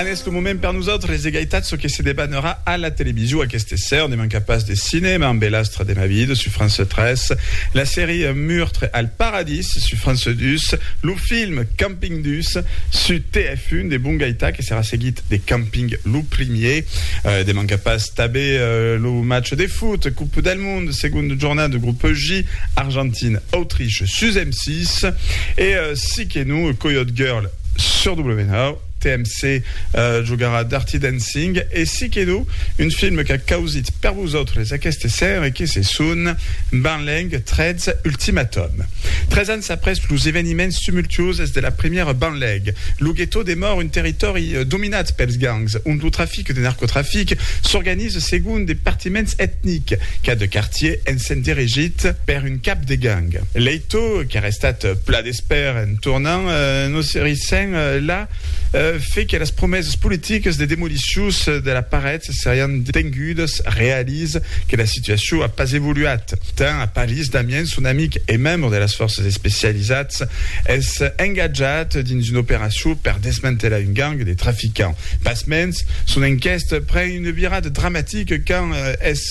Anés lo moment per nosautres de gaitat çò que se debanarà a la television aqueste esser, ne manca pas de cinèma amb el Astre de ma vida sus France 3, la serie Meurtre al paradis sus France 2, lo film Camping 2 sus TF1 de bon gaitat que serà seguit de Camping lo primier, ne manca pas tabé lo match de foot Coupe del monde segonda jornada de groupe J Argentina Autriche sus M6 e si que non Coyote Girl. Sur W9, TMC jogarà Dirty Dancing e si que non, un film qu'a causit per vosautres aqueste ser e que se son Banleng 13 Ultimatum. Tres ans après los eveniments tumultuoses de la primièra Banlèg, lo guetó demòra un territòri dominat pels gangs, ont lo trafic de narcotrafic s'organiza segon de partiments etnics, cada quartier essent dirigit per un cap de gang. Leito, qu'èra estat pla Espèr, en tornant, nos serissèm la fe que las promesas politiques de demolicions de la paret serián tengudas, realis que la situacion a pas evoluat tant a Paris. Damien, son amic e membre de las fòrças especialisats, es engatjat dins una operacion per desmantelar un gang de traficants. Pasmens, son enquèsta pren una virada dramatica quand es